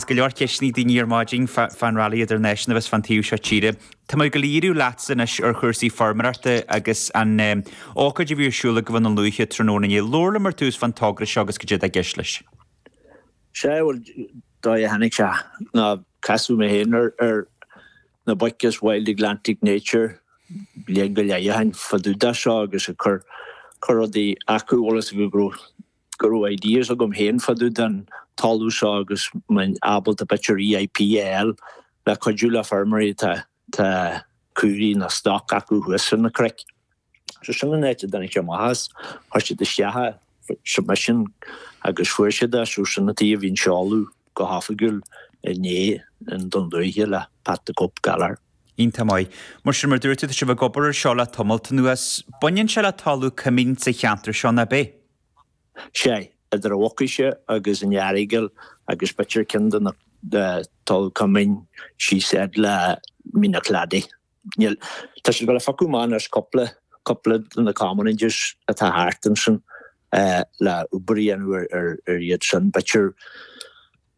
Is go leor leor ceisteanna ag daoine ar maidin fán rally idirnáisiúnta a bheas fán taobh seo tíre. Tá mé ag díriú leatsa anois ar chúrsaí feirmeoireachta agus an ócáid a bhí ar siúl i nDún Lúiche tráthnóna inné. Labhair liom ar tús fán togra seo agus cad é atá i gceist leis. Sea, bhuel, an dóigh a dtáinig sé ná casadh mé féin ar na boic as Wild Atlantic Nature bliain go leith ó shin fadúda seo agus ag cur cur rudaí acu, bhí a fhios acu go raibh go raibh ideas agam féin fá dtaobh den talamh seo agus ábalta b'fhéidir EIP a fháil le cuidiú le feirmeoirí atá tá caoirigh nó stoc acu thuas ar na cnoic. So sin an áit a dtáinig seo amach as, chuir siad isteach an submission agus fuair siad é, so sin an áit a bhí an seoladh go hoifigiúil inné in Dún Lúiche le Pat the Cope Gallagher. Iontach maith. Mar sin, mar a dúirt tú, tá sibh ag obair ar seo le tamalt anuas. Baineann sé le talamh coimín sa cheantar seo, nach mbaineann? Sea, idir an Mhucais agus an Earagail agus b'fhéidir cionn de na talamh coimín síos fhad le Mín an Chladaigh. Níl, tá siad ag gabháil a phiocadh amach anois cúpla, cúpla de na commonages atá thart ansin le obair a dhéanamh ar iad sin. B'fhéidir.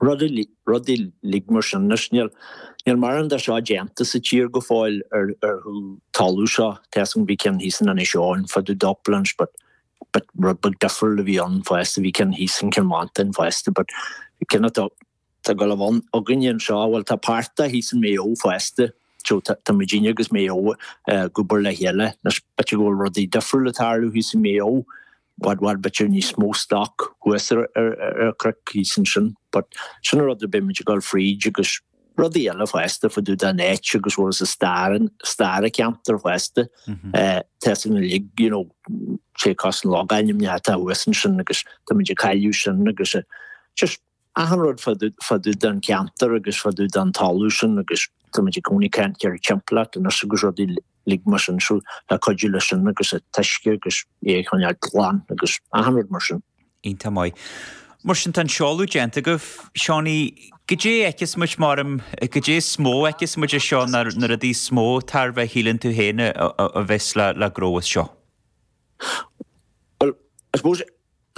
rudaí uilig mar sin, anois níl mórán de seo déanta sa tír go fóill ar an talamh seo, tá a fhios agam bhí ceann thíos in Inis Eoghain fá dtaobh de uplands but rud beag difriúil a bhí ann fosta, bhí ceann thíos in Cill Mhantáin fosta but cinn atá, tá ag gabháil a bheith againne anseo, bhuel tá páirt de thíos in Maigh Eo fosta, so tá muidinne agus Maigh Eo ag obair le chéile, in spite go bhfuil rudaí difriúil ag tarlú thíos in Maigh Eo, Bhfad bhfad b'fhéidir níos mó stoc thuas ar ar cnoic thíos ansin but sin an rud ar beimid ag dul fríd agus rudaí eile fosta fá dtaobh de nature agus bhuel is an stair an stair an cheantair fosta tá a fhios agat uilig you know cionn is na logainmneacha atá thuas ansin agus tá muid ag cailleadh sin agus just Achan rud fá dtaobh den cheantar agus fá dtaobh den talamh sin agus tá muid i gcónaí ag caint ar timpeallacht anois agus rudaí uilig mar sin so le cuidiú leis sin agus a taisce agus é a choinneáil glan agus achan rud mar sin. Iontach maith. Mar sin tá an seoladh déanta agaibh. Seánaí. Goidé fheiceas muid mar, goidé is mó a fheiceas muid as seo nó na rudaí is mó tairbhe a shíleann tú féin a bheas le gnóthú as seo. Bhuel, I suppose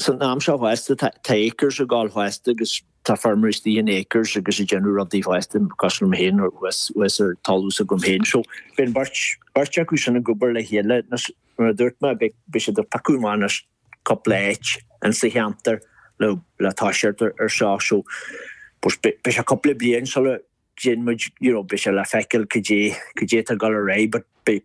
San am seo fosta tá ACRES ag gabháil fosta agus tá feirmeoirí istigh in ACRES agus ag déanamh rudaí fosta, cosúil liom féin thuas ar an talamh s'agam féin. So beidh an bheirt acu sin ag obair le chéile agus mar a dúirt mé beidh siad ag piocadh amach anois cúpla áit in sa cheantar le, le toiseacht ar seo. So beidh sé cúpla bliain sula dtéann muid, you know, beidh sé le feiceáil cad é, cad é atá ag dul ar aghaidh but beidh,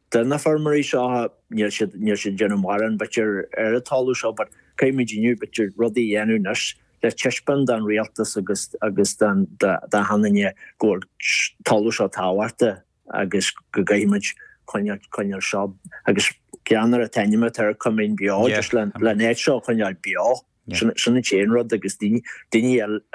Do na feirmeoirí seo, níl siad, níl siad ag déanamh mórán, b'fhéidir, ar an talamh seo, but caithfimid inniu, b'fhéidir, rudaí a dhéanamh anois le taispeáint don Rialtas agus, agus don, do, d'achan duine go bhfuil talamh seo tábhachtach agus go gcaithfimid coinneáil, coinneáil seo agus ceann ar an t-ainm atá air, Coimín Beo, just le, le an áit seo a choinneáil beo. Sin an t-aon rud agus daoine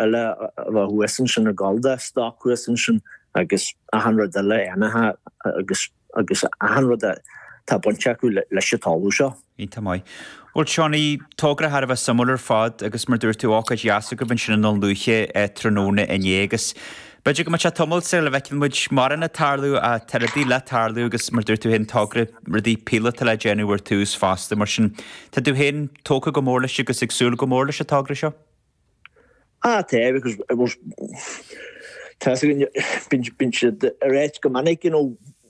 eile a bheith thuas ansin ag gabháil do stoc thuas ansin agus achan rud eile ainmhithe agus achan rud atá bainteach leis an talamh seo. Iontach maith. Bhuel Seánaí, togra thar a bheith suimiúil ar fad agus mar dúirt tú, ócáid dheas agaibh ansin i nDún Lúiche tráthnóna inné agus B'fhéidir go mbeadh sé tamall sula bhfeicfidh muid mórán ag tarlú ach tá rudaí le tarlú agus, mar a dúirt tú féin, togra, rudaí píolóta le déanamh ar tús fosta. Mar sin, tá tú féin tógtha go mór leis agus ag súil go mór leis an togra seo? Tá, because tá, bíonn siad ag ráit go minic, you know,